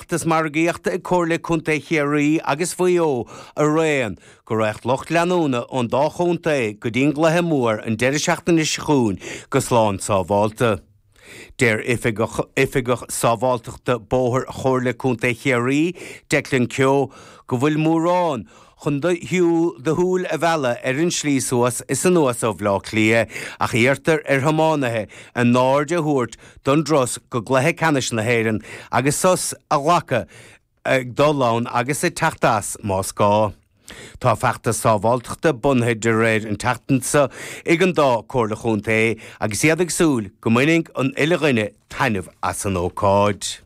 Feachtas margaíochta ag Comhairle Contae Chiarraí agus Mhaigh Eo araon go raghadh lucht leanúna ón dá chontae go dtí an gcluiche mór an deireadh seachtaine seo chugainn go slán sábháilte. Deir Oifigeach Sábháilteachta Bóthair Chomhairle Contae Chiarraí, Declan Keogh, go bhfuil mórán, chun do shúil a mhealladh ar an slí suas is anuas ó Bhleá Cliath, ach iarrtar ar thiománaithe a n-aird a thabhairt don dturas go cluiche ceannais na hÉireann agus sos a ghlacadh ag dul ann agus ag teacht as, más gá. Tá feachtas sábháilteachta bunaithe de réir an tseachtain seo ag an dá Chomhairle Chontae agus iad ag súil go mbainfidh an uile dhuine taitneamh as an ócáid.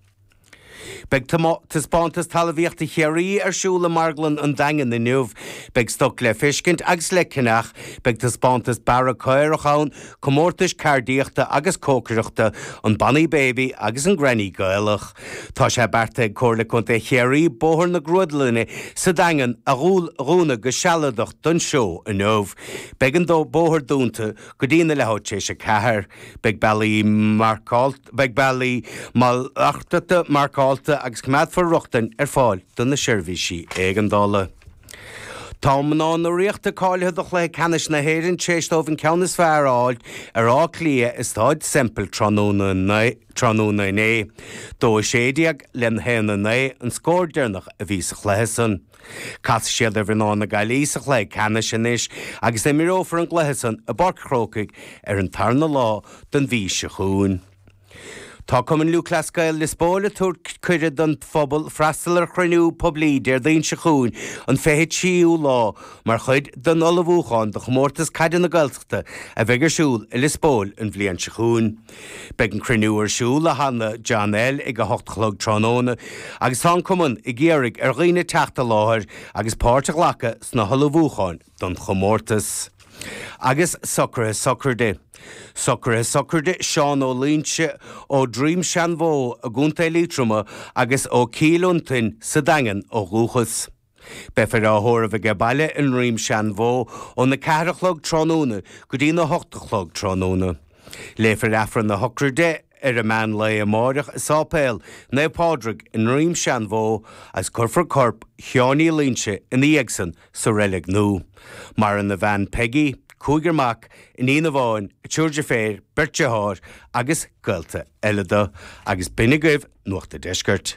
Beidh Taispeántas Talamhaíochta Chiarraí ar siúl i Marglann an Daingin inniu. Beidh stoc le feiscint agus le ceannach. Beidh taispeántas bearradh caorach ann, comórtais ceardaíochta agus cócaireachta, an Bonny Baby agus an Granny Gaelach. Tá sé beartaithe ag Comhairle Contae Chiarraí Bóthar na Grúdlainne sa Daingean a dhúnadh go sealadach don seó inniu. Beidh an bóthar dúnta go dtí na leathuair tar éis a ceathair. Beidh bealaí marcáilte. Beidh bealaí malartachta marcáilte agus coimeádfar rochtain ar fáil do na seirbhísí éigeandála. Tá mná na Ríochta cáilithe do chluiche ceannais na hÉireann tar éis dóibh an ceann is fearr a fháil ar Áth Cliath i Stáid Semple tráthnóna inné. Dó a sé déag le haon a naoi an scór deireanach a bhí sa chluiche san. Casfaidh siad ar mhná na Gaillí sa chluiche ceannais anois agus imreofar an cluiche san i bPáirc Chrócaigh ar an tarna lá den mhí seo chugainn. Tá Cumann Lúthchleas Gael Liospóil ag tabhairt cuireadh don phobal freastal ar chruinniú poiblí Déardaoin seo chugainn an 23ú lá mar chuid den ullmhúchán do Chomórtas Caide na Gaeltachta a bheidh ar siúl i Liospóil an bhliain seo chugainn. Beidh an cruinniú ar siúl i Halla John L ag 8 a chlog tráthnóna agus tá an Cumann ag iarraidh ar dhaoine teacht i láthair agus páirt a ghlacadh sna hullmhúcháin don chomórtas. Agus socruithe sochraide. Socruithe sochraide Seán Ó Loinsigh ó Dhroim Seanbhó i gContae Liatroma agus ó Chill Fhionntain sa Daingean ó dhúchas. Beifear á thórramh aige baile i nDroim Seanbhó óna ceathair a chlog tráthnóna go dtí na hocht a chlog tráthnóna. Léifear Aifreann na hÓcáide ar an meán lae amáireach i Sáipéal Naomh Pádraig i nDroim Seanbhó agus cuirfear corp Sheáin Uí Loinsigh ina dhiaidh san sa reilig nú. Maireann a bhean Peggy, cúigear mac, iníon amháin, a triúr deirféar, beirt dearthár agus gaolta eile do. Agus b'shin agaibh Nuacht an Deiscirt.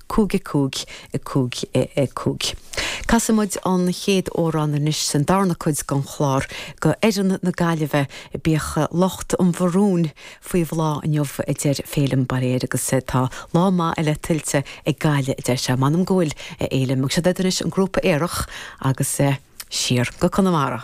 cúig a cúig a cúig a cúig. Casfaidh muid an chéad amhrán anois sa darna cuid den chlár, Go fhoireann na Gaillimhe, bíodh lucht an mharúin faoi bhláth inniu a deir Féilim Bairéad agus tá lá maith eile tuillte ag Gaillimh a deir sé. M'anam go bhfuil, a Fhéilim, agus seo duit anois an grúpa Aerach agus Siar go Conamara.